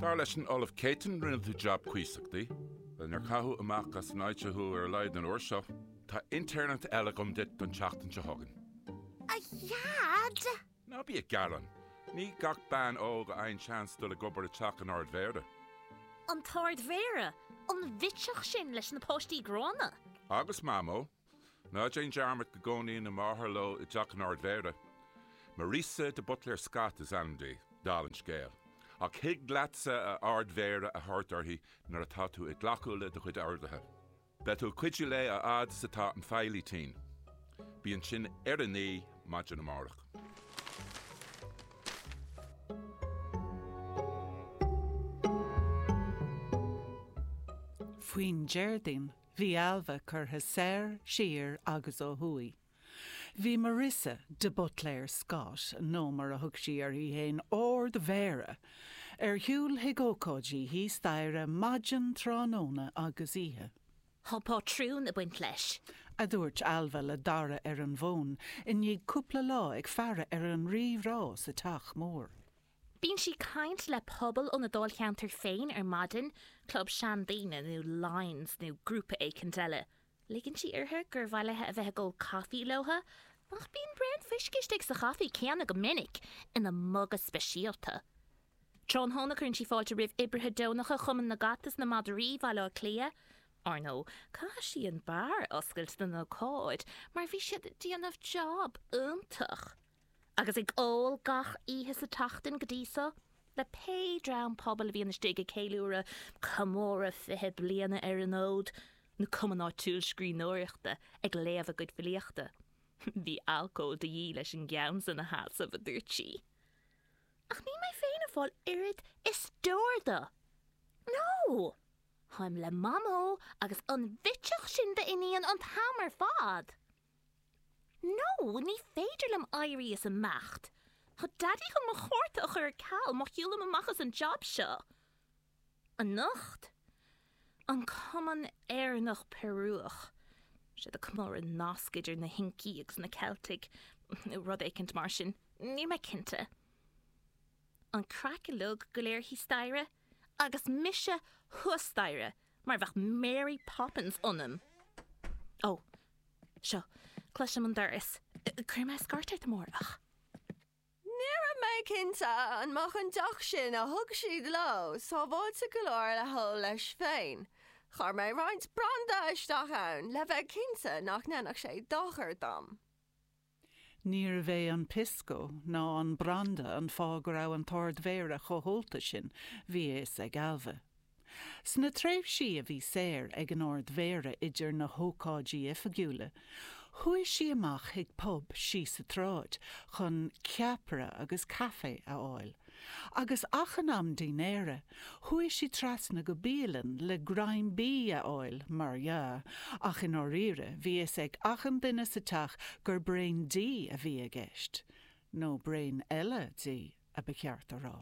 Dar leis an Ollamh Céitinn rinne tú jab cuíosach di. Bhuel níor caitheadh amach as an áit seo thú ar a laghad an uair seo. Tá intéirneacht eile agam duit don tseachtain seo chugainn. A Dhaid! Ná bí ag gearán. Ní gach bean óg a fhaigheann seans dul ag obair i teach an Ard Mhéara. An tArd Mhéara? An bhitseach sin leis na páistí gránna? Agus Mamó, Ná déan dearmad go gcónaíonn a máthair leo i dteach an Ardmhéara. Marisa de Butléir Scott is ainm di, dál an scéil. Ach thig leatsa a Ardmhéara a thabhairt uirthi nuair atá tú ag glacadh le do chuid orduithe. Beidh tú ag cuidiú léi a fhad is atá an feighlí tinn. Bí ansin ar a naoi maidin amárach. faoin Déardaoin. Bhí Ailbhe curtha soir, siar agus ó thuaidh. Bhí Marissa de Butléir Scott, nó mar a thug sí uirthi fhéin 'Árd Mhéara', ar shiúl chuig ócáidí thíos staighre maidin, tráthnóna agus oíche. Tá pátrún a baint leis. a dúirt Ailbhe le Dara ar an bhfón i ndiaidh cúpla lá ag faire ar an rí-rá sa teach mór. Bíonn sí caint le pobal óna dáilcheantar féin ar maidin, club seandaoine nó Lions nó grúpa éicint eile. Ligeann sí uirthi gur mhaith léi a bheith ag ól caife leo, ach bíonn braon fuisce istigh sa chaife céanna go minic, ina muga speisialta. Tráthnóna cuireann sí fáilte roimh oibrithe deonacha Chumann na gCat is na Madraí Bhaile Átha Cliath. Ar ndóigh, chaith sí an beár a oscailt don ócáid mar bhí siad ag déanamh jab iontach. agus ag ól gach oíche sa tseachtain go dtí so, le pé dream pobail a bhíonn istigh ag ceiliúradh comóradh fiche bliana ar an fhód, nó cumann áitiúil scríbhneoireachta ag léamh a gcuid filíochta. Bhí alcól de dhíth leis an gceann san a sheasamh, a dúirt sí. Ach níl mé féin ag fáil oiread is deor de. No! Táim le Mamó agus an bhitseach sin d'iníon an t-am ar fad! Nó, Ní féidir liom éirí is imeacht. Tá Daidí chun mo chárta a chur ar ceal má shiúlaim amach as an jab seo anocht. An Cumann Éireannach Peiriúch. Seo ag comóradh an nasc idir na hIncigh agus na Ceiltigh, nó rud éicint mar sin. Níl mé cinnte. An craic uilig go léir thíos staighre? Agus mise thuas staighre! Mar a bheadh Mary Poppins ionam. Ó, seo, cloisim an doras. Cuirfidh mé scairt ort amárach. Ní raibh mé cinnte an mbeadh an deoch sin a thug siad leo sábháilte go leor le hól leis féin. Chuir mé roinnt branda isteach ann le bheith cinnte nach ndéanfadh sé dochar dom. Níorbh é an pisco ná an branda an fáth go raibh an tArd-Mhéara chomh hólta sin, bhí a fhios ag Ailbhe. Sna tréimhsí a bhí saor ag an Ard-Mhéara idir na hócáidí oifigiúla, chuaigh sí amach chuig pub síos sa tsráid chun ceapaire agus caife a fháil. Agus achan am dinnéir, chuaigh sí trasna go bialann le greim bídh a fháil, mar dhea, ach i ndáiríre, bhí fhios ag achan duine sa teach gur braon dí a bhí i gceist. Nó braon eile dí, a ba cheart a rá.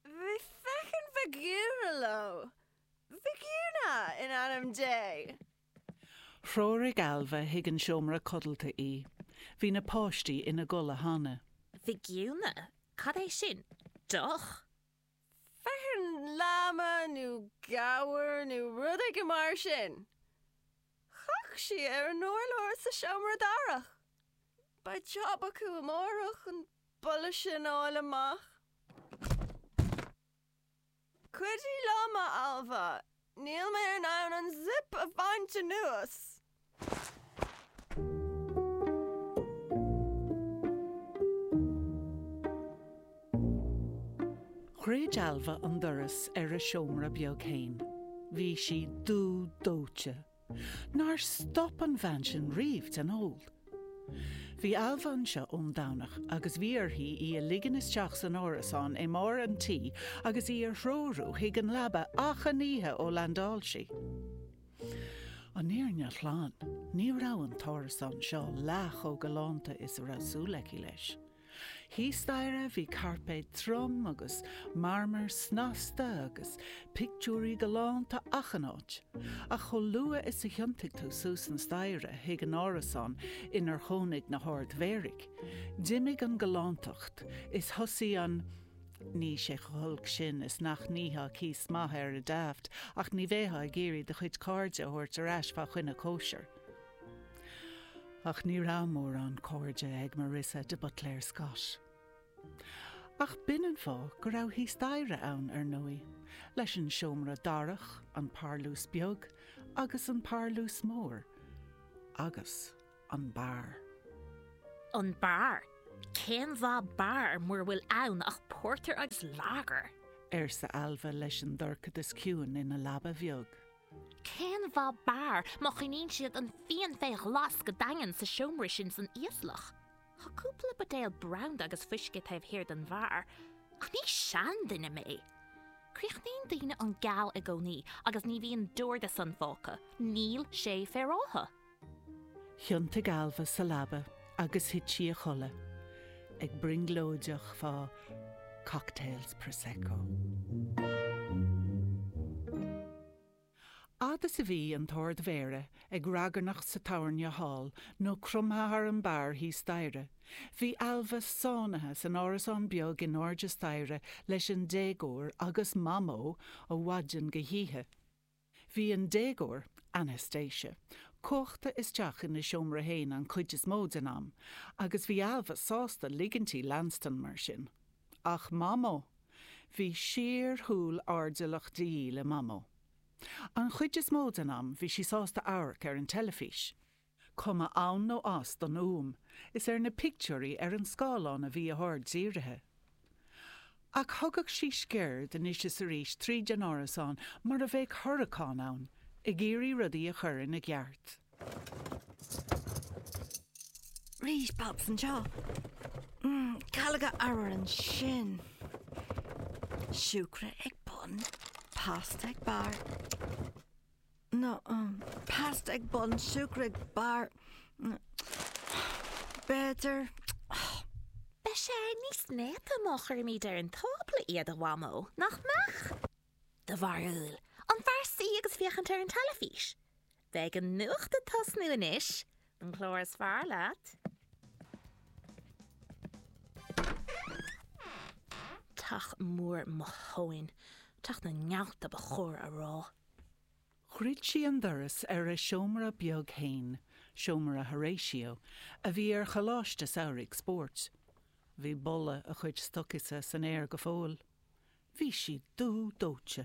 Bhí feitheamh Vicuña leo. Vicuña, in ainm Dé! Threoraigh Ailbhe chuig an seomra codlata í. Bhí na páistí ina gcodladh cheana. Vicuña? Cad é sin? Deoch? Feithearn lama nó gabhar nó rud éigin mar sin! Chaith sí ar an urlár sa seomra darach. Beidh jab acu amárach an boladh sin a fháil amach. Cuidigh liom, a Ailbhe! Níl mé in ann an zip a bhaint anuas! Dhruid Ailbhe an doras ar a seomra beag féin. Bhí sí dubh dóite. Nár stop an bhean sin riamh den ól. Bhí Ailbhe anseo ón Domhnach agus bhí uirthi í a ligean isteach san árasán i mbarr an tí agus í a threorú chuig an leaba achan oíche ó landáil sí. An fhírinne ghlan, ní raibh an t-árasán seo leath chomh galánta is a bhí súil aici leis. Thíos staighre bhí cairpéad trom agus marmar snasta agus pictiúirí galánta achan áit. Ach chomh luath is a thiontaigh tú suas an staighre chuig an árasán inar chónaigh na hArd-Mhéaraigh, d'imigh an galántacht is thosaigh an Ní raibh sé chomh holc sin is nach nítheá cíos maith air ar Daft ach ní bheifeá ag iarraidh do chuid cairde a thabhairt ar ais fá choinne cóisir. Ach ní raibh mórán cairde ag Marissa de Buitléir Scott. Ach b'in an fáth go raibh thíos staighre ann, ar ndóigh, leis an seomra darach, an parlús beag agus an parlús mór. Agus an beár. An beár? Cén mhaith beár mura bhfuil ann ach pórtar agus lager? arsa Ailbhe leis an dorchadas ciúin ina leaba bheag. Cén mhaith beár má choinníonn siad an fíon faoi ghlas go daingean sa seomra sin san íoslach? Tá cúpla buidéal branda agus fuisce taobh thiar den bheár, ach ní seanduine mé! Críochnaíonn daoine an Gall i gcónaí agus ní bhíonn deor de sin fágtha, níl sé féaráilte! Thiontaigh Ailbhe sa leaba agus thit sí a chodladh, ag brionglóideach fá cocktails Prosecco. Fhad is a bhí an tArd-Mhéara ag ragairneacht sa tábhairne thall nó cromtha thar an beár thíos staighre, bhí Ailbhe sáinnithe san árasán beag in airde staighre leis an déagóir agus Mamó ó mhaidin go hoíche. Bhí an déagóir, Anastasia, cuachta isteach ina seomra féin an chuid is mó den am agus bhí Ailbhe sásta ligint di leanstan mar sin. Ach Mamó! Bhí síorshúil airdeallach de dhíth le Mamó. An chuid is mó den am bhí sí sásta amharc ar an teilifís. cuma ann nó as don fhuaim is ar na pictiúirí ar an scáileán a bhí a haird dírithe. Ach thugadh sí sciuird anois is arís tríd an árasán mar a bheadh huracán ann, ag iarraidh rudaí a chur ina gceart. Rís pops anseo. Calóga arbhair ansin. Siúcra ag bun, pasta ag barr. nó pasta ag bun siúcra ag barr nó b'fhéidir. Beidh sé níos néata má chuirimid ar an tábla iad, a Mhamó, nach mbeadh? Do bharúil, an fearr suí agus féachaint ar an teilifís? Beidh an nuacht ag tosnú anois, An clár is fearr leat? Teach mór mo thóin. Teach na nGealt ba chóir a rá. Dhruid sí an doras ar a seomra beag fhéin, seomra Horatio, a bhí ar choláiste samhraidh spóirt. Bhí boladh a chuid stocaí sa san aer go fóill. Bhí sí dubh dóite.